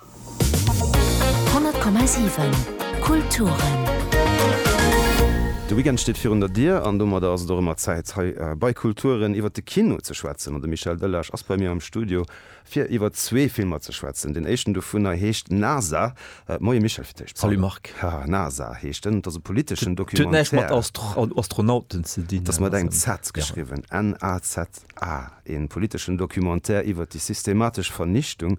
100,7 Kulturen. De Weekend steet virun der Dier an domadder ass et och ëmmer Zäit hei bei Kulturen iwwert de Kino ze schwätzen an de Michel Delage ass bei mir am Studio fir iwwert zwee Filmer ze schwätzen. Deen éischten dovunner heescht NASA. Moie Michel fir d'éischt. Salut Marc. Haha NASA heescht en. Et ass e politeschen Documentaire. Et huet näischt mat Astronauten ze dinn. Et ass mat engem Z geschriwwen, NASA, een politeschen Documentaire iwwert déi systematesch Vernichtung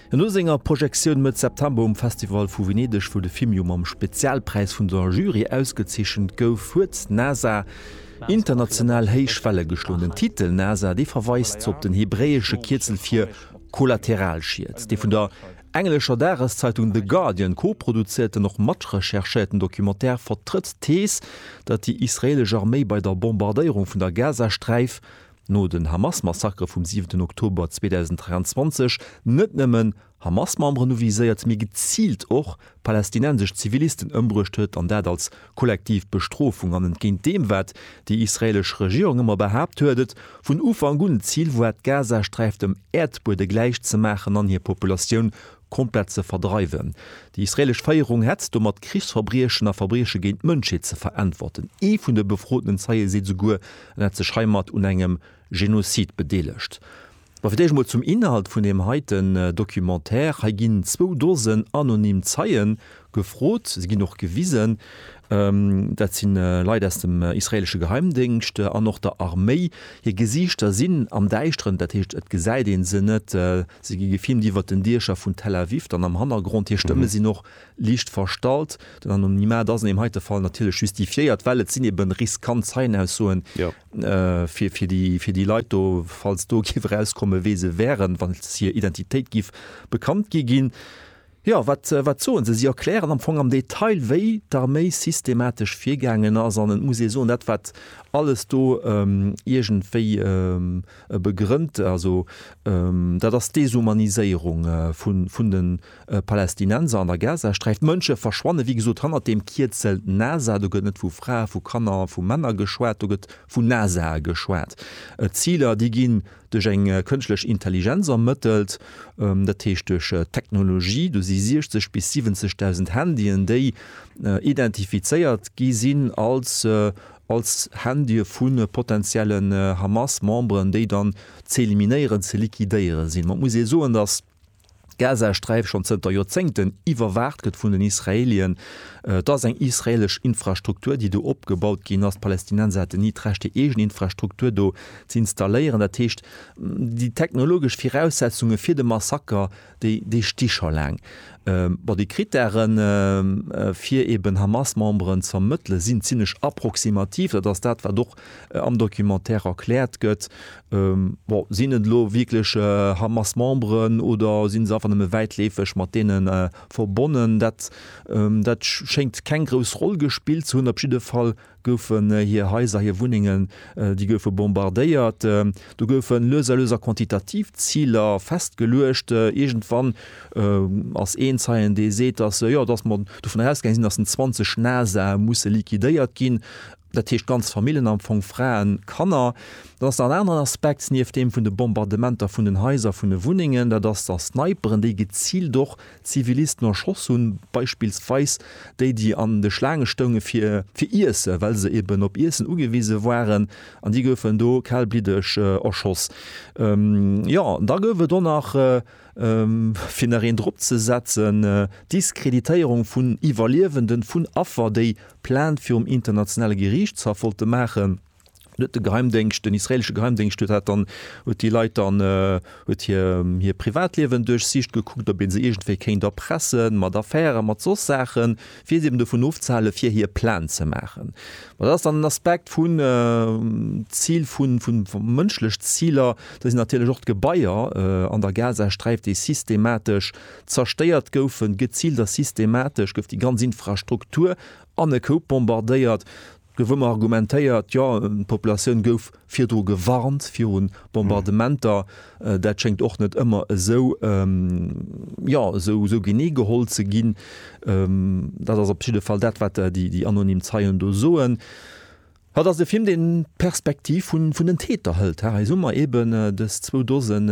No senger Projektioun Mëtt September um Festival vu Venedeg, wou de Film jo mam Spezialpräis vun der Jury ausgezeechent gouf, huet NASA international héich Welle geschloen. Den Titel NASA, dee verweist op den hebräesche Kierzel fir Kollateralschied, dee vun der englescher Dageszeitung The Guardian koproduzéierten, och matrecherchéierten Documentaire vertrëtt d'Thees, datt déi israeelesch Arméi bei der Bombardéierung vun der Gazasträif no den Hamas-Massakere vum siwenten Oktober 2023 net nëmmen Hamas-Memberen u viséiert, mee geziilt och palästinensesch Zivilisten ëmbruecht huet, an dat als kollektiv Bestrofung. An entgéint deem, wat déi israeelesch Regierung ëmmer behaapt huet, et vun Ufank un d'Zil war, d'Gazasträif dem Äerdbuede gläich ze maachen an hir Populatioun komplett ze verdreiwen. Déi israelesch Féierung hätt domat Krichsverbriechen a Verbrieche géint d'Mënschheet ze verantworten. Ee vun de befrotenen Zeie seet esouguer, en hätt sech heimat un engem Genozid bedeelegt. Ma fir d'éischt emol zum Inhalt vun deem heiten Documentaire. Hei ginn zwou Dosen anonym Zeien Gefrot, si ginn och gewisen. Dat si Leit aus dem israeelesche Geheimdéngscht an och der Arméi. Hir Gesiichter sinn am Däischteren, dat heescht et gesäit een se net. Si gi gefilmt iwwert den Diecher vun Tel Aviv dann am Hannergrond. Hir Stëmme sinn och liicht verstallt. Den Anonymat ass an deem heite Fall natierlech justifiéiert, well et sinn ebe riskant Zeienaussoen fir déi Leit do. Falls do géif erauskommen, wee se wäeren, wa hir Identitéit géif bekannt gi ginn, Jo, wat, wat soen se? Si erklären am Fong am Detail, wéi d'Arméi systematesch virgaangen ass. An et muss ee soen, dat wat alles do iergendwéi begrënnt, also dat ass d'Deshumaniséierung vun de Palästinenser an der Gazasträif. D'Mënsche verschwanne wéi gesot hannert deem Kierzel NASA. Do gëtt net vu Frae, vu Kanner, vu Männer geschwat, do gëtt vun NASAe geschwat. Ziler, déi gi Duerch eng kënschtlech Intelligenz ermëttelt, dat heescht duerch Technologie. Do si 60 bis 70.000 Handyen, déi identifizéiert gi sinn als als Handye vu potenziellen Hamas-Memberen, déi dann ze eliminéieren, ze liquidéiere sinn. Ma et muss ee soen, datt D'Gazasträif, schonn zënter Joerzéngten iwwerwaacht gëtt vun den Israelien. Et ass eng israeelesch Infrastruktur, déi do opgebaut ginn ass. D'Palästinenser hätten ni d'Recht, hir eegen Infrastruktur do ze installéieren. Dat heescht, déi technologesch Viraussetzunge fir de Massaker, déi, déi sti scho laang. Bon, déi Krittäre fir eeben Hamas-Memberen ze ermëttele sinn zimlech approximativ. Dat ass dat, wat och am Documentaire erkläert gëtt. Bon, sinn et elo wierklech Hamas-Memberen oder si se einfach nëmme wäitleefeg mat deene verbonnen? Dat, dat schéngt keng grouss Roll gespillt ze hunn. Op jidde Fall goufen hir Haiser, hir Wunnengen, déi goufe bombardéiert. Do goufe lues a lues a quantitativ Ziler festgeluecht. Iergendwann ass een Zeien, dee seet, datt, jo, datt mer dovun ausgaange sinn, datt en 20 Nasae musse liquidéiert ginn. dat heescht ganz Famillen, am Fong Fraen, Kanner, dann ass nach en aneren Aspekt nieft deem vun de Bombardementer vun den Haiser, vun de Wunnengen, dat ass, datt d'Sniperen, déi geziilt och Zivilisten erschoss hunn, beispillsweis déi, déi an de Schlaange stounge fir fir Iessen, well se eben op Iessen ugewise waren, an déi goufen do kalbliddeg erschoss. Jo, da gouf et och nach, Fir nach een drop ze setzen, d'Diskreditéierung vun Iwwerliewenden, vun Affer, déi Plainte virum internationale Geriichtshaff wollte maachen, dann huet de Geheimdéngscht, den israelesche Geheimdéngscht huet dat dann, huet déi Leit dann, huet hir Privatliewen duerchsicht, gekuckt, ob ee se iergendwéi kéint erpressen, mat Affären, mat soss Saachen. fir si eben dovun ofzehale fir hir Plan ze maachen. Ma dat ass dann den Aspekt vun Zil vu mënschlech Ziler. Do sinn natierlech och d'Gebaier an der Gazasträif, déi systematesch zerstéiert goufen, geziilt a systematesch gouf déi ganz Infrastruktur an e Koup bombardéiert. Gouf ëmmer argumentéiert, jo d'Populatioun gouf virdru gewarnt viru Bombardementer. Dat schéngt och net ëmmer esou, jo esou genee geholl ze ginn. Dat ass op jidde Fall dat, wat déi anonym Zeien do soen. Hatt ass e Film, deen d'Perspektiv vun den Täter hëlt. Hei hu mer eben dës zwou Dosen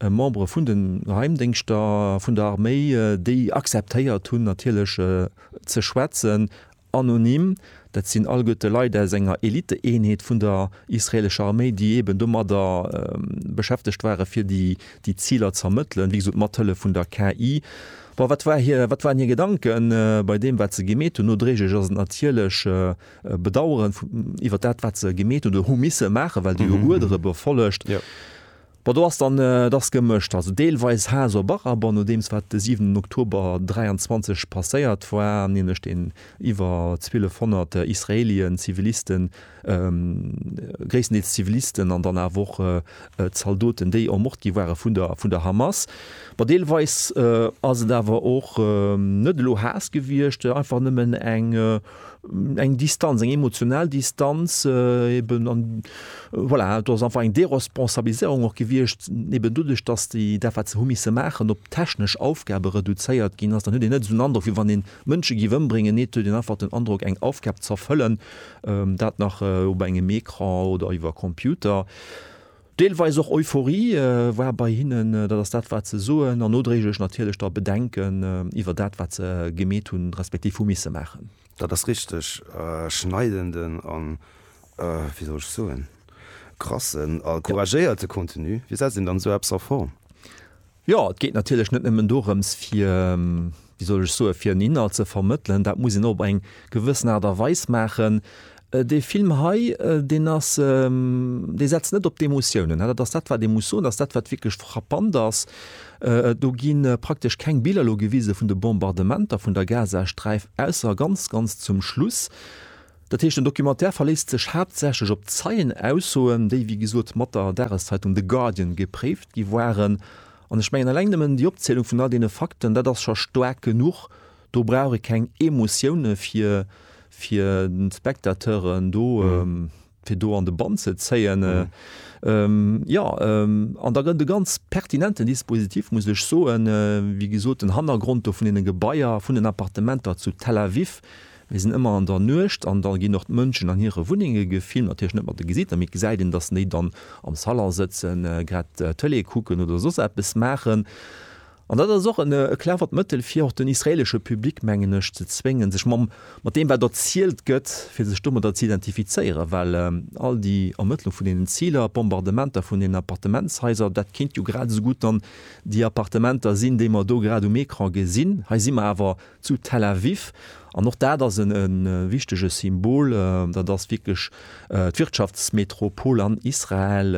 Membere vun de Geheimdéngschter, vun der Arméi, déi acceptéiert hunn natierlech ze schwätzen Anonym, Dat sinn alleguerte Leit aus enger Elite-Eenheet vun der israelescher Arméi, déi eeben domadder beschäftegt waren, fir déi Ziler ze ermëttelen, wéi gesot mat Hëllef vun der KI. Bon, wat war hir, wat waren hir Gedanken bei deem, wat se gemeet hunn? Nodréiglech ass et natierlech e Bedaueren iwwert dat, wat se gemeet hunn oder hu misse maachen, well déi jo Uerdere befollegt. Bon, do ass dann, et ass gemëscht. Also deelweis Haas op Araber, nodeems wat de 7 Oktober 23 passéiert war, nämlech deen iwwer 1.200 Israelien, Zivilisten, gréisstendeels Zivilisten an dann awer och Zaldoten, déi ermort gi ware vun der Hamas. Bon, deelweis ass et awer och net elo Haas gewiescht, einfach nëmmen eng. Eng Distanz, eng emotional Distanz eben an voilà, do ass einfach eng Déresponsabiliséierung och gewiescht, eben doduerch, datt déi dat wat se hu misse maachen, op technesch Aufgabe reduzéiert ginn ass, dann huet een net esou den Androck wéi wann ee Mënsche géif ëmbréngen, nee et huet een einfach den Androck eng Aufgab z'erfëllen, dat nach op engem Ecran oder iwwer Computer. Deelweis och Euphorie war bei hinnen, dat ass dat, wat se soen, an nodréiglech natierlech da Bedenken iwwer dat, wat se gemeet hunn, respektiv hu misse maachen. Dat ass richteg schneidenden a, wéi soll ech soen, krassen a couragéierte Contenu. Wéi setzt een dann esou eppes a Form? Jo, et geet natierlech net nëmmen dorëms, fir, wéi soll ech soen, fir en Inhalt ze vermëttelen, dat muss een och op eng gewëssen Aart a Weis maachen. Dee Film hei, deen ass, dee setzt net op d'Emotiounen. Dat ass dat, wat ee muss soen, dat ass dat, wat wierklech frappant ass. Do gi praktesch keng Biller elo gewise vun de Bombardementer vun der Gazasträif, ausser ganz, ganz zum Schluss. Dat heescht, den Documentaire verléisst sech haaptsächlech op Zeienaussoen, déi, wéi gesot, mat der Dageszeitung The Guardian gepréift gi waren. An ech mengen, eleng nëmmen déi Opzielung vun all deene Fakten, dat ass scho staark genuch. Do brauch ee keng Emotioune fir, fir d'Spectateuren do, fir do an de Bann ze zéien. Jo, an da gëtt et e ganz pertinenten Dispositif, muss ech soen, wéi gesot, den Hannergrond do vun deene Gebaier, vun den Appartementer zu Tel Aviv, Mir sinn ëmmer an der Nuecht an da ginn och d'Mënschen an hire Wunnenge gefilmt, natierlech net mat de Gesiichter, mee et gesäit een, datt déi dann am Salon sëtzen, grad Tëlee kucken oder soss eppes maachen. An dat ass och e clevert Mëttel, fir och den israeelesche Public, mengen ech, ze zwéngen, sech mam, mat deem wat erzielt gëtt, fir sech domadder ze identifizéieren, well all déi Ermëttlung vun deenen Ziler, d'Bombardementer vun deenen Appartementshaiser, dat kéint jo grad esou gutt dann déi Appartementer sinn, déi mer do grad um Ecran gesinn. Hei si mer awer zu Tel Aviv. An och dat ass e wichtege Symbol, dat ass wierklech d'Wirtschaftsmetropol an Israel,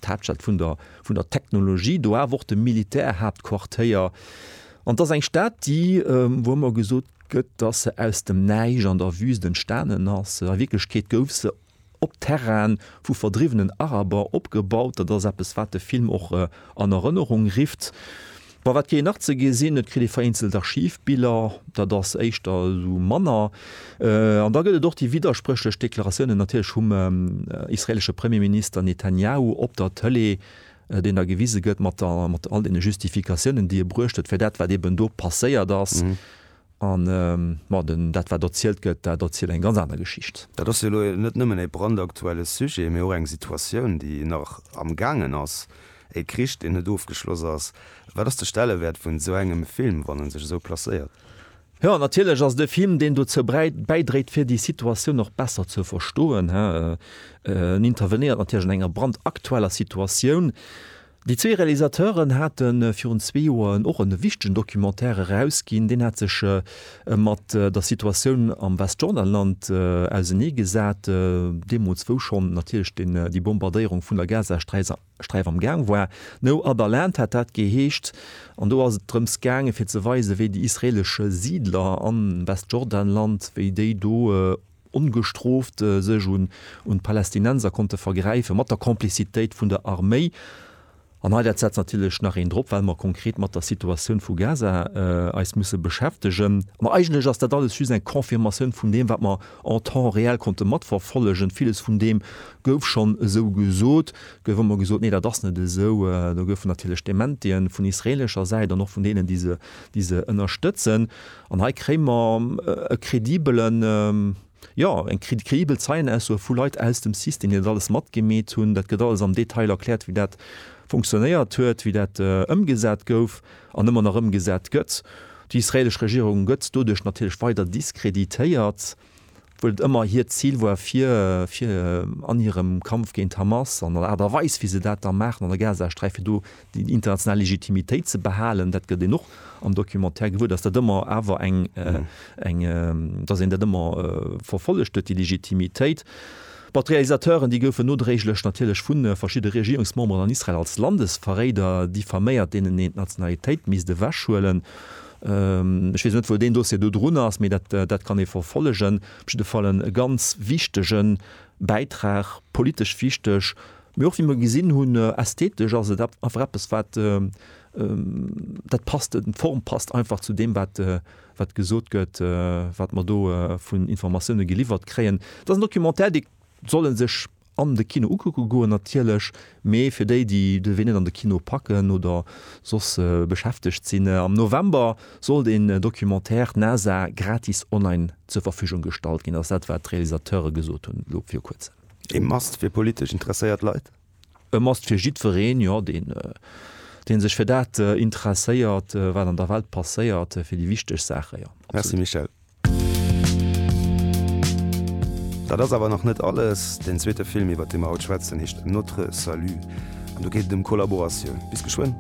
d'Haaptstad vun der vun der Technologie, do awer och de Militärhaaptquartéier. An et ass eng Stad, déi, wou ëmmer gesot gëtt, datt se aus dem Näischt an der Wüst entstanen ass, a Wierklechkeet gouf se op Terraine vu verdriwwenen Araber opgebaut. Dat ass eppes, wat de Film och an Erënnerung rifft. Bei Wat geet nach ze gesinn? Et kritt ee vereenzelt Archivbiller, dat ass éischter esou manner. An da gëtt et och déi widderspréchlech Deklaratiounen natierlech vum israeelesche Premierminister Netanjahu op der Tëlee, deen da gewise gëtt mat all deene Justifikatiounen, déi e bruecht huet fir dat, wat eeben do passéiert ass. An ma den, dat wat erzielt gëtt, dat erzielt eng ganz aner Geschicht. Dat ass jo elo net nëmmen e brandaktuelle Sujet, mee och eng Situatioun, déi nach am Gaangen ass, e Krich, deen net ofgeschloss ass. Wat ass de Stellewäert vun esou engem Film, wann en sech esou placéiert? Jo, natierlech ass et e Film, deen dozou bäidréit, fir déi Situatioun och besser ze verstoen. En intervenéiert natierlech an enger brandaktueller Situatioun. Déi zwee Realisateuren hate virun zwee Joer och e wichtegen Documentaire erausginn. Deen hat sech mat der Situatioun am Westjordanland ausenee gesat, deemools wou schonn natierlech déi Bombardéierung vun der Gazasträif am Gaang war. No other land hat dat geheescht an do ass et drëms gaangen fir ze weisen, wéi déi israeelesche Siidler am Westjordanland, wéi déi do, ongestrooft sech un d'Palästinenser konnte vergräifen, mat der Komplizitéit vun der Arméi. An hei, dat setzt natierlech nach een drop, well mer konkret mat der Situatioun vu Gaza eis musse beschäftegen. Mä eigentlech ass dat alles just eng Confirmatioun vun deem, wat mer en temps réel konnte matverfollegen. Villes vun deem gouf schonn esou gesot, gouf ëmmer gesot, Nee, dat ass net esou. Do goufen natierlech Dementien vun israeelescher Säit an och vun deenen, déi se ënnerstëtzen. An hei kréie mer e kredibelen, jo, eng kredibel Zeienaussoe vu Leit aus dem System, déi dat alles matgemeet hunn. Dat gëtt alles am Detail erkläert, wéi dat funktionéiert huet, wéi dat ëmgesat gouf an ëmmer nach ëmgesat gëtt. Déi israeelesch Regierung gëtt doduerch natierlech weider diskreditéiert. wuel et ëmmer hiert Zil war fir fir an hirem Kampf géint d'Hamas an der Aart a Weis wéi se dat da maachen an der Gazasträif fir do déi international Legitimitéit ze behalen. Dat gëtt een och am Documentaire gewuer, datt dat ëmmer awer eng eng datt een dat ëmmer verfollegt huet déi Legitimitéit. Bon, d'Realisateuren déi goufen nodréiglech natierlech vu verschidde Regierungsmemberen an Israel als Landesverréider diffaméiert deenen een d'Nationalitéit misst ewechhuelen. Ech weess net, wou deen Dossier do drun ass, mee dat kann ee verfollegen. Op jidde Fall e ganz wichtege Bäitrag, politesch wichteg, mee och, wéi mer gesinn hunn, ästhetesch ass et einfach eppes, wat dat passt, d'Form passt einfach zu deem, wat gesot gëtt, wat mer do vun Informatioune geliwwert kréien. Et ass en Documentaire, dee soll ee sech an de Kino ukucke goen natierlech, mee fir déi, déi de Wee net an de Kino packen oder soss beschäftegt sinn, am November soll den Documentaire NASA gratis online zur Verfügung gestallt ginn, ass dat wat d'Realisateure gesot hunn elo viru kuerzem. E Must fir politesch interesséiert Leit? E Must fir jiddwereen, jo, dee sech fir dat interesséiert wat an der Welt passéiert, fir déi wichteg Saachen, jo. Merci Michèle. Dat ass awer nach net alles, den zweete Film iwwert dee mer haut schwätzen heescht Notre Salut an do geet et ëm Kollaboratioun. Bis geschwënn.